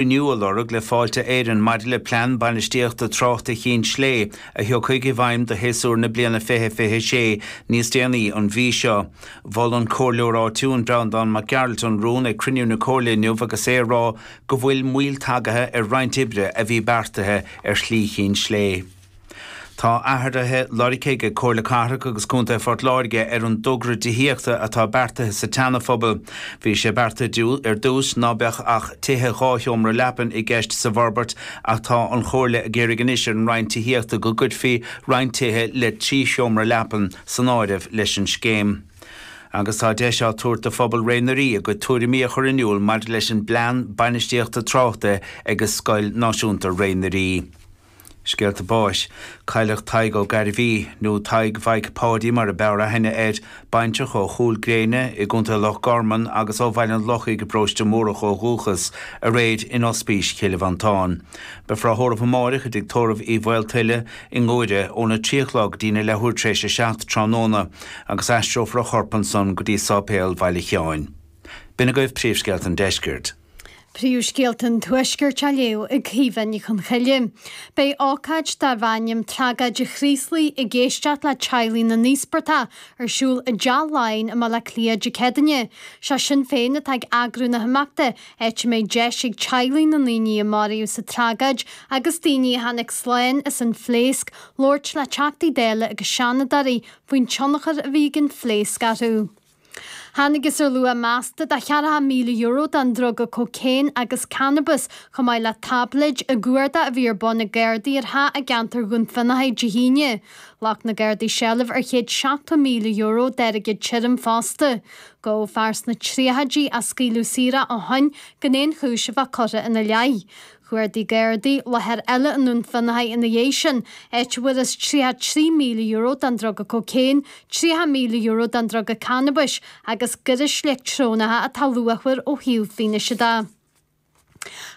inniu a lorg le Fáilte Éireann maidir leis an bplean bainistíochta tráchta Chinn Slé a thiocfaidh i bhfeidhm do shéasúr na bliana 2026 níos déanaí an mhí seo. Mhol an comhairleoir áitiúil Breandán Mac Gearailt an rún ag cruinniú na comhairle inniu agus é ag rá go bhfuil moill tagaithe ar roinnt oibre a bhí beartaithe ar Shlí Chinn Slé. Tá athruithe lorgtha ag Comhairle Cathrach agus Contae Phort Láirge ar an dtogra tithíochta atá beartaithe sa tSeanaphobal. Bhí sé beartaithe ar dtús ná beadh ach tithe dhá sheomra leapan i gceist sa bhforbairt ach tá an Chomhairle ag iarraidh anois ar an Roinn Tithíochta go gcuirfí roinnt tithe le trí sheomra leapan san áireamh leis an scéim agus tá deis á tabhairt do phobal Ré na dTeiríní a gcuid tuairimí a chur in iúl maidir leis an bplean bainistíochta tráchta ag Scoil Náisiúnta Ré Nairí. Scéalta báis, cailleadh Tadhg Ó Gairbhí, nó Tadhg Mhaidhc Pháidí mar ab fhearr aithne air, baintreach ó Chúil Gréine i gContae Loch Garman agus ó Bhaile an Lochaigh i bParóiste Múrach ó dhúchas, aréir in Ospís Chill Mhantáin. Beifear á thórramh amáireach i dTigh Tórraimh Uí Mhaoltuile i nGuaire óna trí a chlog dtín a leathuair tar éis a seacht tráthnóna agus aistreofar a chorp ansan go dtí Sáipéal Bhaile Sheáin. B'in agaibh príomhscéalta an Deiscirt. Príomhscéalta an Tuaiscirt á léamh ag Caoimhe Ní Chonchoille. Beidh ócáid darb ainm 'Tragóid an Chraoslaigh ag éisteacht le teaghlaigh na n-íospartach' ar siúl i dTeach Laighean i mBaile Átha Cliath Dé Céadaoin. Is é Sinn Féin atá ag eagrú na himeachta, áit a mbeidh deis ag teaghlaigh na ndaoine a maraíodh sa tragóid agus daoine a tháinig slán as an phléasc labhairt le Teachtaí Dála agus Seanadóirí faoin tionchar a bhí ag an phléasc orthu. Thángthas ar luach measta de cheathracha míle euro den druga cócaon agus cannabas, chomh maith le táibléid, i gcuardach a bhí ar bun ag Gardaí ar theach i gceantar Dhún Fionnachaidh Dé hAoine. Ghlac na Gardaí seilbh ar chéad seachtó míle euro d'airgead tirim fosta. Gabhadh fear sna tríochaidí a scaoileadh saor ó shin gan aon chúis a bheith curtha ina leith. Chuardaigh Gardaí láthair eile i nDún Fionnachaidh ina dhiaidh sin, áit a bhfuarthas €33,000 den druga cócaon, €30,000 den druga cannabais agus gairis leictreonacha atá luachmhar ó thaobh fianaise de.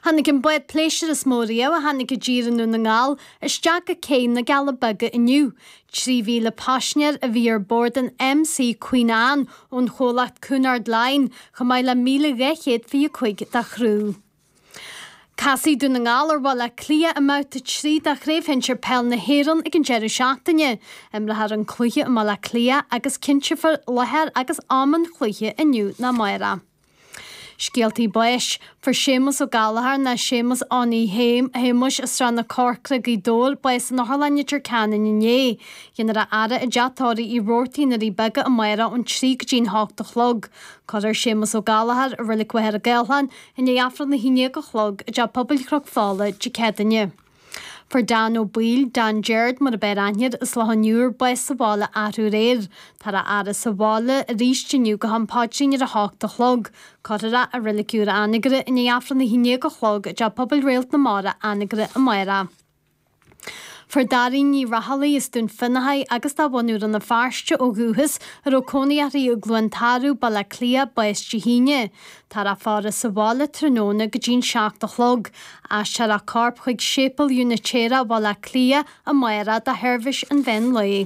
Tháinig an bád pléisúir is mó riamh a tháinig i dtír i nDún na nGall isteach go cé na gCealla Beaga inniu. 3,000 paisinéir a bhí ar bord an MS Queen Anne ón chomhlacht Cunard Line, chomh maith le 1,225 dá chriú. Casfaidh Dún na nGall ar Bhaile Átha Cliath i mbabhta trí de Chraobh Shinsir Peil na hÉireann ag an deireadh seachtaine. Imreofar an cluiche i mBaile Átha Cliath agus cinnteofar láthair agus am an chluiche inniu ná amárach. Scéaltaí báis, Fuair Séamus Ó Gallchóir nó Séamus Eoin Shéamuis as Srath na Corcra, Gaoth Dobhair, bás in Otharlann Leitir Ceanainn inné. Dhéanfar a fhaire i dTeach Tórraimh Roarty na nDoirí Beaga amárach ón trí go dtí an hocht a chlog. Cuirfear Séamus Ó Gallchóir i Reilig Mhachaire Gathlán, I ndiaidh Aifreann 11 a chlog i dTeach Pobail Chnoc Fola, Dé Céadaoine. Fuair Dan Ó Baoill, Dan Jeairt mar ab fhearr aithne air as Loch an Iúir, bás sa bhaile athrú aréir. Táthar á fhaire sa bhaile arís inniu go ham paidrín ar a hocht a chlog. Cuirfear é i reilig úr Anagaire i ndiaidh Aifreann 11 a chlog i dTeach Pobail Réalt na Mara, Anagaire, amárach. Fuair Dairín Ní Raghallaigh as Dún Fionnachaidh agus de bhunadh Rann na Feirste ó dhúchas, a raibh cónaí uirthi i gCluain Tarbh, Baile Átha Cliath, bás Dé hAoine. Táthar á faire sa bhaile tráthnóna go dtí an seacht a chlog. Aistreofar a corp chuig Séipéal Úinitéireach Bhaile Átha Cliath amárach do sheirbhís an mheán lae.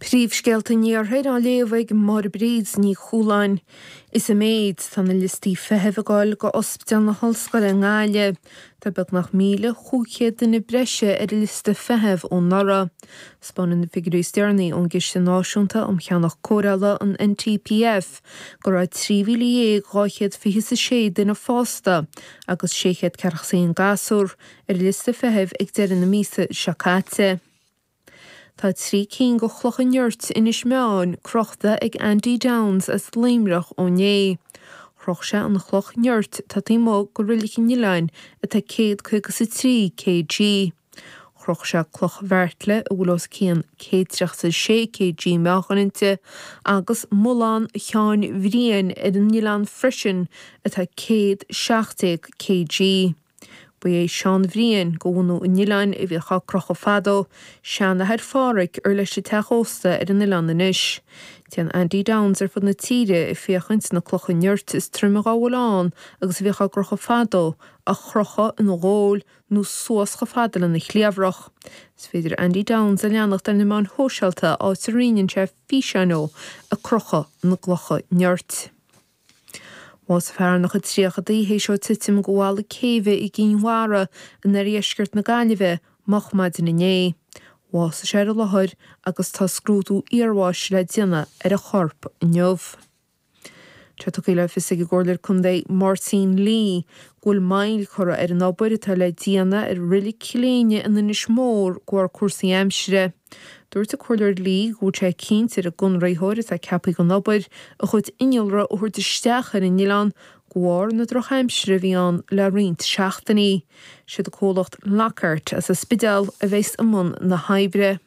Príomhscéalta an Iarthair á léamh ag Máire Bríd Ní Chualáin. Is i méid atá na liostaí feithimh ag gabháil do Ospidéal na hOllscoile i nGaillimh. Tá beagnach 1,500 duine breise ar an liosta feithimh ó anuraidh. Taispeánann na figiúirí is deireanaí ón gCiste Náisiúnta um Cheannach Cóireála, an NTPF, go raibh 13,226 duine fásta agus 600 ceathracha is a haon gasúr ar an liosta feithimh ag deireadh na míosa seo caite. Tá trí cinn de chlocha nirt Inis Meáin crochta ag Andy Downes as Luimneach ó inné. Chroch sé an chloch nirt atá taobh amuigh de reilig an oileáin atá céad caoga is a trí kg. Chroch sé cloch Bheartla a bhfuil os cionn céad tríocha is a sé kg meáchain inti agus mullán Sheáin Bhriain ar an oileán freisin atá céad seacht déag kg. Ba é Seán Bhriain, de bhunadh an oileáin, a bhíodh á crochadh fadó, seanathair Phádraig, ar leis an teach ósta ar an oileán anois. Téann Andy Downes ar fud na tíre ag féachaint na clocha nirt is troime dá bhfuil ann agus a bhíodh á gcrochadh fadó, a chrochadh ina ghabháil nó suas chomh fada lena chliabhrach. Is féidir Andy Downes a leanacht ar na meáin shóisialta áit a roinneann sé físeáin dhó ag crochadh na gclocha nirt. Bhásaigh fear ina chuid tríochaidí théis dó titim de bhalla céibhe i gCinn Mhara in oirdheisceart na Gaillimhe moch maidin inné. Bhásaigh sé ar an láthair agus tá scrúdú iarbháis le déanamh ar a chorp inniu. Tá tugtha le fios ag an gComhairleoir Contae Martin Lee go bhfuil moill curtha ar an obair atá le déanamh ar reilig Chill Éinne in Inis Mór de bharr cúrsaí aimsire. Dúirt an Comhairleoir Lee go bhfuil sé cinnte ar an gconraitheoir atá ceaptha don obair a chuid innealra a thabhairt isteach ar an oileán de bharr na drochaimsire a bhí ann le roinnt seachtainí. Siad an comhlacht Lockhart as an Spidéal a bheas i mbun na hoibre.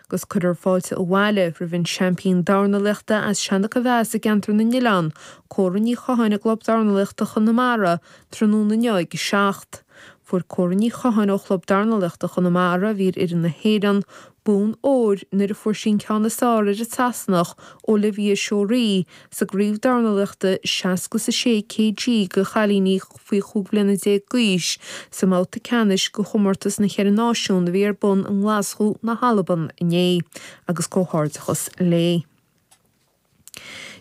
Agus cuirfear fáilte abhaile roimh an seaimpín dornálaíochta as Seanachomheas i gceantar na nOileán, Cora Ní Chatháin i gClub Dornálaíochta Chonamara tráthnóna inniu ag a seacht. Fuair Córa Ní Chatháin ó Chlub Dornálaíochta Chonamara, a bhí ar fhoireann na hÉireann, bonn óir nuair a fuair sí an ceann is fearr ar an tSasanach, Olivia Seoraí, sa gcraobh dornálaíochta 60 is 6 kg do chailíní faoi chúig bhliana déag d'aois sa mbabhta ceannais de chomórtas na gCeithre Náisiún a bhí ar bun i nGlaschú na hAlban inné agus comhghairdeachas léi.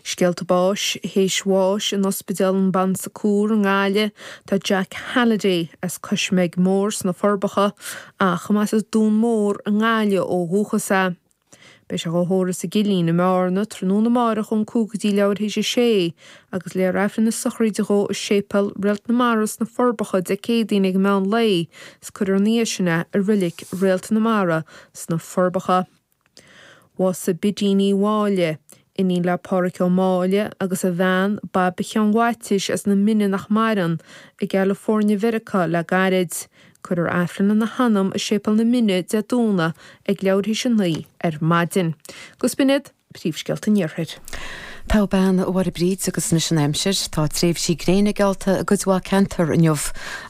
Scéalta báis théis bháis in Ospidéal an Bon Secours i nGaillimh. Tá Jack Halliday as Coismeig Mór sna Forbacha ach arb as Dún Mór i nGaillimh ó dhúchas é, beidh sé dhá thórramh sa gCillín i mBearna tráthnóna amárach ón 5 go dtí leathuair théis a sé agus léifear Aifreann na sochraide dhó i Séipéal Réalt na Mara sna Forbacha Dé Céadaoin ag meán lae is cuirfear ina dhiaidh sin é i Reilig Réalt na Mara sna Forbacha. Bhásaigh Bidín Uí Mháille, iníon le Pádhraic Ó Máille agus a bhean Baibchean Mhaitiais as na Mine nach maireann, i gCalifoirnea Mheiriceá le gairid. Cuirfear Aifreann lena hanam i Séipéal na Mine, Dé Domhnaigh, ag leathuair théis a naoi ar maidin. Agus b'in iad, Príomhscéalta an Iarthair. Togha mná a Mháire Bríd agus anois an aimsir. Tá tréimhsí gréine geallta i gcuid mhaith ceantar inniu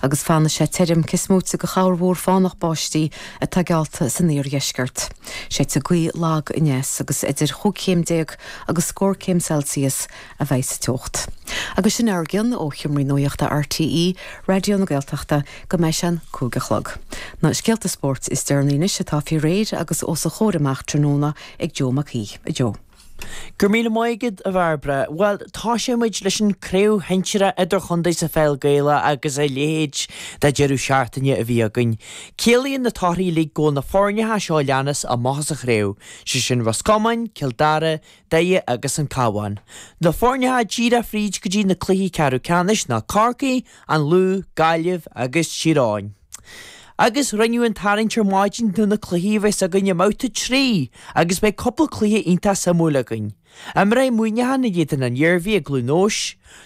agus fanfaidh sé tirim, cés moite de chorrmhúr fánach báistí atá geallta san iardheisceart. Séidfidh gaoth lag aneas agus idir chúig chéim déag agus scór céim Celsius a bheidh sa teocht. Agus sin a bhfuil againn ó sheomra nuachta RTÉ Raidió na Gaeltachta go mbeidh sé an cúig a chlog. Na scéalta spóirt is deireanaí anois atá faoi réir agus os a chomhair amach tráthnóna ag Joe Mac Aoidh. A Joe. Go raibh míle maith agat, a Bhairbre. Bhuel, tosóidh muid leis an craobh shinsir idirchontae sa Pheil Gaelach agus a leithéid de deireadh seachtaine a bhí againn. Ciallaíonn na torthaí uilig go bhfuil na foirne seo a leanas amach as an chraobh, sé sin Ros Comáin, Cill Dara, Doire agus an Cabhán. Na foirne atá díreach fríd go dtí na cluichí ceathrú ceannais ná Corcaigh, An Lú, Gaillimh agus Tír Eoghain. Agus rinneadh an tarraingt ar maidin do na cluichí a bheas againn i mBabhta 3 agus beidh cúpla cluiche iontach suimiúil againn. Imreoidh Muineachán in éadan an Iarmhí i gCluain Eois,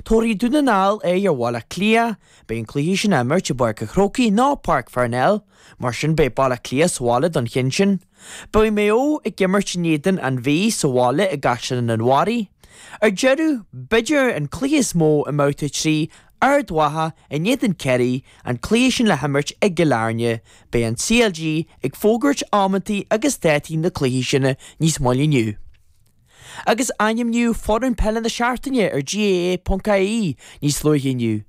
tabharfaidh Dún na nGall aghaidh ar Bhaile Átha Cliath, beidh an cluiche sin á imirt i bPáirc an Chrócaigh, nó Páirc Pharnell, mar sin beidh Baile Átha Cliath sa bhaile don cheann sin. Beidh Maigh Eo ag imirt in éadan An Mhí sa bhaile i gCaisleán an Bharraigh. Ar deireadh, b'fhéidir an cluiche is mó i mBabhta 3, Ard Mhacha in éadan Ciarraí, an cluiche sin le himirt i gCill Airne. Beidh an CLG ag fógairt amanntaí agus dátaí na cluichí sin níos moille inniu. agus ainmníodh foireann peile na seachtaine ar GAA.ie níos luaithe inniu.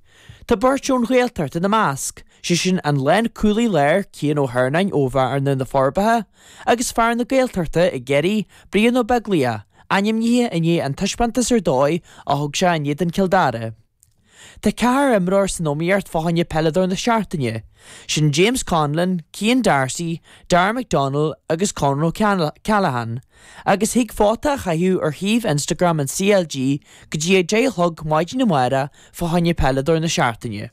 Tá beirt ón Ghaeltacht ina measc, sé sin an lánchúlaí láir Cian Ó hEarnáin ó Bhearna, Na Forbacha, agus fear na Gaeltachta i gCiarraí, Brian Ó Beaglaoich, ainmnithe i ndiaidh an taispeántas ar dóigh a thug sé in éadan Cill Dara. Tá ceathrar imreoir san iomaíocht fá choinne peileadóir na seachtaine. Sin James Conlon, Cian D'Arcy, Darragh McDonnell agus Con O'Callaghan agus thig vóta a chaitheamh ar shuíomh Instagram an CLG go dtí a deich a chlog maidin amárach fá choinne peileadóir na seachtaine.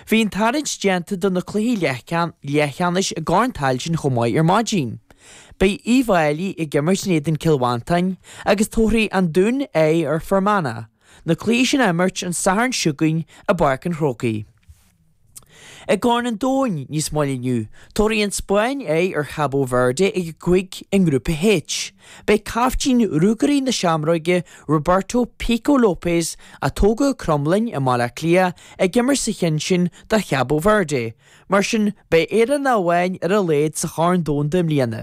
Bhí an tarraingt déanta do na cluichí leathcheannais i gCorn Tailteann chomh maith ar maidin. Beidh Uíbh Fháilí ag imirt in éadan Cill Mhantáin agus tabharfaidh An Dún aghaidh ar Fhear Manach, na cluichí sin á n-imirt an Satharn seo chugainn i bPáirc an Chrócaigh. I gCorn an Domhain níos moille inniu, tabharfaidh An Spáinn aghaidh ar Chabo Verde ag a cúig i nGrúpa H. Beidh caiftín Ruagairí na Seamróige, Roberto 'Pico' Lopes, a tógadh i gCromghlinn i mBaile Átha Cliath, ag imirt sa cheann sin do Chabo Verde, mar sin beidh Éireannach amháin ar a laghad sa Chorn Domhanda i mbliana.